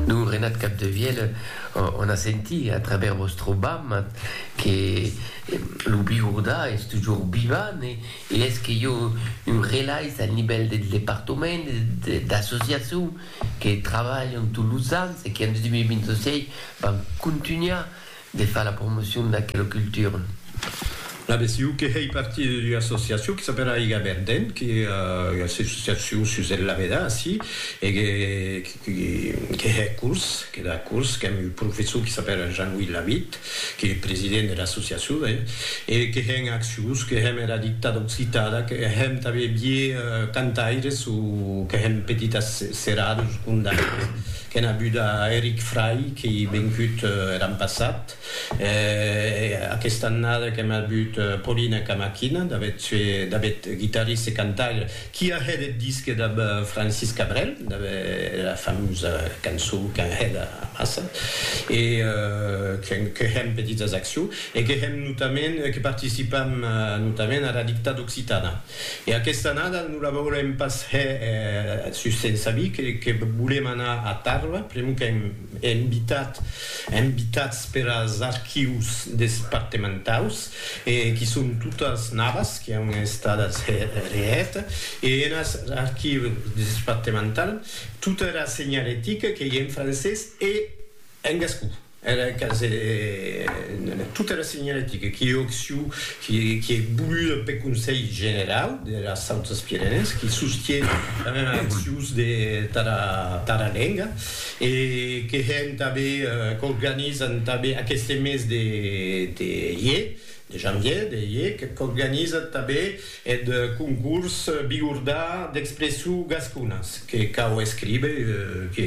Lo Renat Capdevielle ò'on a senti a travèrs vòstre bam que lo Biurdà es tujor vivant e es que i ò un relais al nivèl deth departament e des associacions que trabalhan tots los ans e que en 2026 van contunhar de far la promocion d'aquela cultura. La BCU que hèi partir d'ua associacion que s'apèla Aiga Verden, que ua associacion sus el lavedar ací, e que que hè curs, que da curs, qu'èm un professor que s'apèla Jean-Louis Lavitte, qu'ei president de l'associacion, hè, e que hè en accions, que hèm era dictada occitada, que hèm tanben vier cantaires o que hèm petitas seradas o condaires. Qu'en abuda a Eric Fry qu'i vencut er an passat, e aquesta annada qu'en abut Paulina Camaquina, Davet guitarriste cantaire qui a hèt eth disque dab Francis Cabrel, dab era famosa cançon qu'an hèt amassa, e que hèm petitas accions, e que hèm notament, que participam notament ara dictada occitana. E aquesta annada non la veurem pas hè sus sens avis que volem anar a Tarba, pr'amor qu'èm invitats per as archius despartementaus e qui son totas navas qui an estadas hè reèt e en as archius despartemental tota era senhalética qu'ei en francés e en gascon. Era casa en tota era senhalética qui òc siu qui ei voluda peth Conselh Generau dera Sautas Pirenèes qui sostie tanben accions de tara lenga e que hèn tanben qu'organizan tanben aqueste mes de ier De janvier de iec qu'organizat tabé eth concurs Bigordà d'expressu gasconas que cau escribe que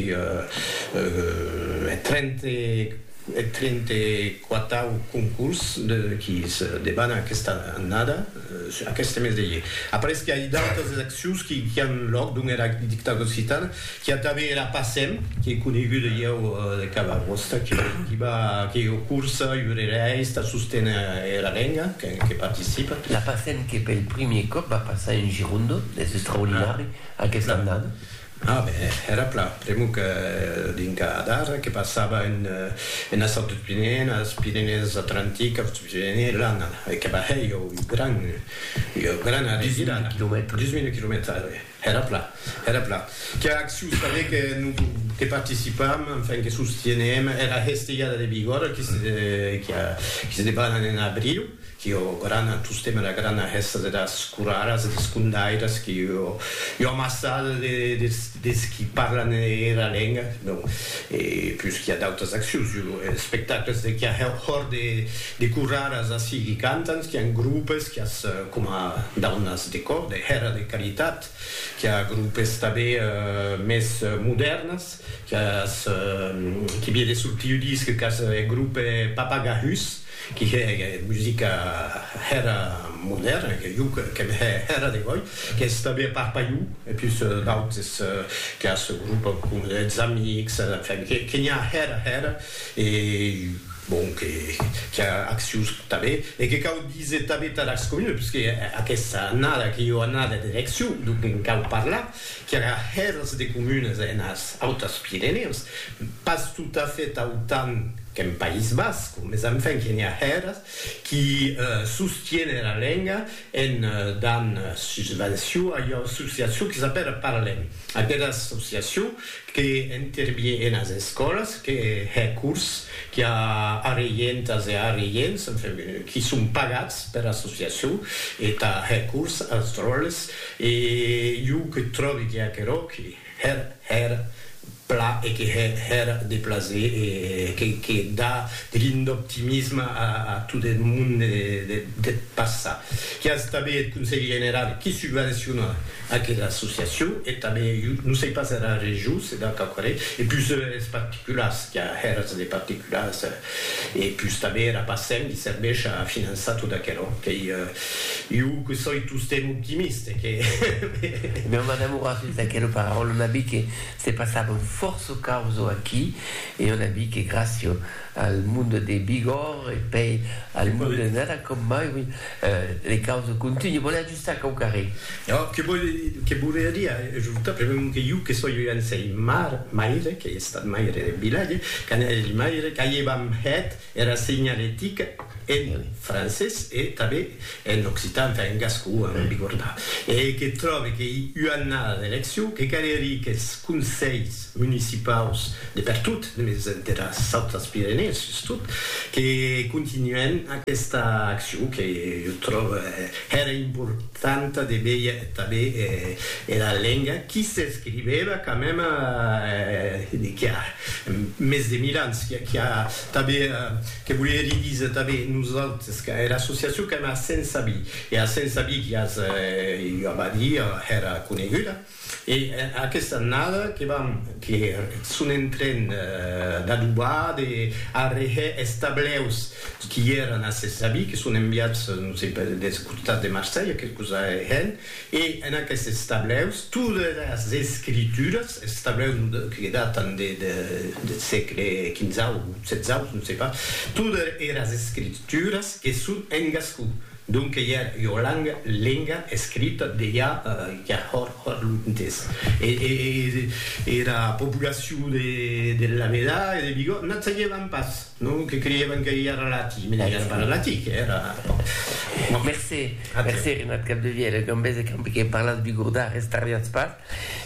eth trente quatau concurs qui se debana aquesta annada, aqueste mes de iec. Après qu'i a d'autes accions qui an lòc dons era dictadura occitana, Qu'a tanben era Passem, qu'ei coneguda ieu de cada vòsta, que diba qu'ei ua corsa iurerèis tà sosténer era lenga, que participa. La Passem que pel primier còp va passar en Gironde, es extraordinari aquesta annada. A ben, era plan, pr'amor que dinca d'ara que passava enes Autes Pirenèes, enes Pirenèes Atlantiques, Autes Pirenèes, l'an e que va hèr ieu gran, ieu grana revirada, 10.000 quilomètres. Era plan, era plan. Qu'a acciu saber que non que participam, enfin que sostienem era hestelhada de Bigòrra qui se qui a qui se debanan en abriu, qui o grana tostemp era grana hèsta de das coraras e des condaires qui o ua amassada de des des qui parlan era lenga, non e pus qui a d'autas accius, jo espectacles de qui a hòr de De corraras ací qui cantan, qu'i an grupes, qu'i as coma daunas de còr, de hèra de caritat, qu'i a grupes tanbé mès modèrnas, qu'i as, qui vie de sortir ua disc, qu'as eth grupe Papagahus, qui hè musica hèra modèrna, que jo qu'èm hè hèra de gòi, qu'ès tanbé a Parpaiu, e pus d'autes, qu'i as grupe com Eths Amics, enfin, que n'i a hèra hèra, e Bon, que qu'i a accions tanben e que cau díser tanben tà las comunes, parce que aquesta annada qu'i ua annada d'eleccions, donc en cau parlar, qu'i a hèrs de comunes enas Autas Pirenèus, pas tot a fait autant qu'en País Basc, mes enfin qu'i a hèrs qu'i sostienen la lenga En dan susvencion a ua associacion que s'apèra Paralèm. Aquera associacion que intervie enas escòlas, que hè cors, qui a arreientas e arreients, enfin, qui son pagats pera associacion e tà hè cors as dròlles e jo que tròbi que aquerò que Hèr, hèr, pla e que hè, hèr, de plaser e que que da de lin d'optimisme a a tot eth monde de deth passat. Qué as tanben eth Conselh Generau qui subvenciona aquera associacion e tanben jo non sei pas era region se da quauquarren e pus es particulars, qu'a hèrs de particulars. E pus tanben era PASEM li serveish a finançar tot aquelo qu'ei iu que soi tostemp optimiste e que Non, madame Horacius, d'aquelo pararòl on a vist que se passavan fòrça causo aquí e on a vist que gràcia al monde de Bigòrre e pei al monde de Nada com mai, oui, les causes continuent. Sac au carré. Ò, que vòl, que volia dire ajortar, pr'amor que jo que soi un sei mar, maire, qu'ei estat maire de vilatge, qu'an hèt maire, qu'aievam hèt era senhaletica en francés e tanben en occitan, enfin en gascon, a non bigordar, e que tròbe qu'ei ua annada d'eleccion, que calerie qu'es conselhs municipaus de pertot, mès deras autras Pirenèes sustot, que continuèn aquesta accion que jo tròbe, Hèra importanta de véier tanben era lenga qui s'escrivèva quand mème qui a mès de mil ans, qui a tanben, que volerie díser tanben nosautes, era associacion qu'èm a Saint-Sabí, e a Saint-Sabí qui as ua abadía, hèra coneguda, E aquesta annada que vam que son en tren d'adobar, de arrehè es tableus qui èran a ses avis, que son enviats, non sei, per des costats de Marselha, que cosa hèn, e en aquestes tableus, todas es escrituras, es tableus que datan de deth sègle quinzau, setzau, non sei pas, todas eras escrituras que son en gascon, Donque ja ua langa, lenga, escrita, deia ja hòr hòr lo ntes. E era populacion de Lameda e de Bigòt n'ac sagevan pas, non? Que creievan que ja era latin, mès ja era pas latin, que era. Mercé, mercé, Renat Capdevièlh, e Gambés e Camp, que parlatz bigordà, restarriatz pas.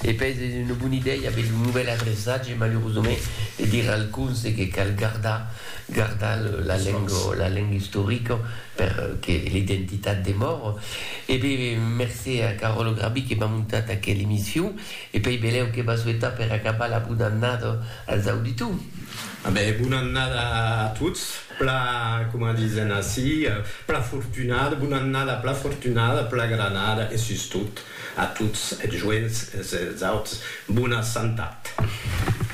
E pes es una bona idèia aver lo novèl adreçatge, malurosament, de dire al conse que cal gardar, gardar la lenga, la lenga istorica per que l'identitat demore. E be, mercé a Caròlo Grabí que m'a montat aquela emission e pei belèu que va souetar per acabar la bona annada als auditors. A be, bona annada a tots, pla, coma disen ací, pla fortunada, bona annada pla fortunada, pla granada e sustot. A tots es joents, es auts, bona santat.